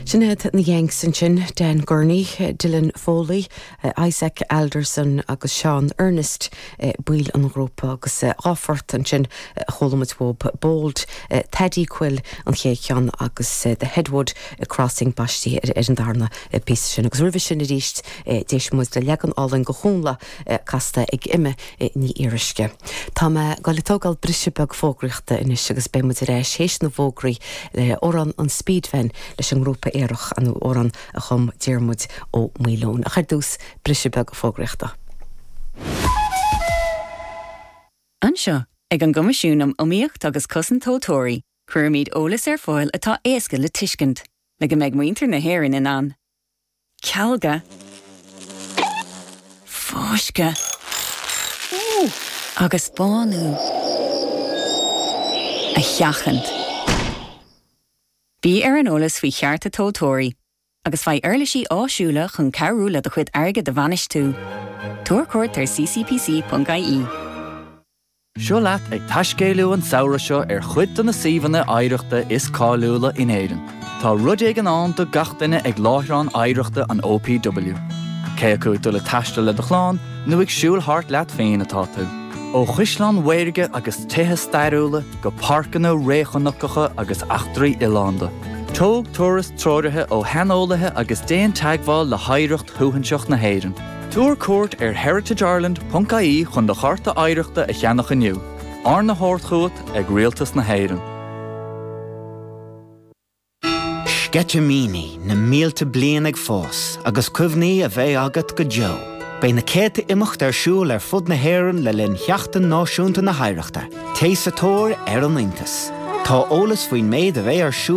Sin iad na Yanks ansin, Dan Gurney, Dylan Foley, Isaac Alderson agus Seán Earnest baill an ghrúpa agus dhá phort ansin a chuala muid uathu, Bold Thady Quill an chéad cheann agus The Headwood Crossing baistithe ar an darna píosa sin. Agus roimhe sin arís d'éist muid le leagan álainn Dhónall Óg casta ag Eimear Ní Fhíoruisce. Tá mé goil a tógáil briseadh beag fógraíochta anois agus beidh muid ar ais tar éis na bhfógraí le amhrán an Speed Van leis an ngrúpa Aerach, an t-amhrán a chum Diarmuid Ó Maoileoin. Ach ar dtús, briseadh beag fógraíochta. Anseo, ag an gCoimisiún um Iomaíocht agus Cosaint Tomhaltóirí, cuirimid eolas ar fáil atá éasca le tuiscint, le go mbeidh muintir na hÉireann in ann, cealga, fáisceadh agus bánú a sheachaint. Bí ar an eolas faoi chearta tomhaltóirí agus faigh uirlisí áisiúla chun cabhrú le do chuid airgid a bhainistiú. Tabhair cuairt ar ccpc.ie. Seo leat ag taiscéaladh an samhradh seo ar chuid de na suíomhanna oidhreachta is cáiliúla in Éirinn. Tá rud éigin ann do gach duine ag láithreán oidhreachta an OPW. Cé acu ag dul ag taisteal le do chlann nó ag siúl thart leat féin atá tú, ó chaisleáin mhaorga agus tithe stairiúla go páirceanna réchnocacha agus eachtraí oileánda, tóg turas treoraithe ó shaineolaithe agus déan teagmháil le hoidhreacht shuaithinseach na hÉireann. Tabhair cuairt ar heritageireland.ie chun do Chárta Oidhreachta a cheannach inniu, arna thabhairt chugat ag Rialtas na hÉireann. Sceitimíní na mílte bliain ag fás agus cuimhní a bheidh agat go deo. Beidh na céadta imeacht ar siúl ar fud na hÉireann le linn Sheachtain Náisiúnta na hOidhreachta. Téigh sa tóir ar an iontas. Tá eolas faoin méid a bheidh ar siúl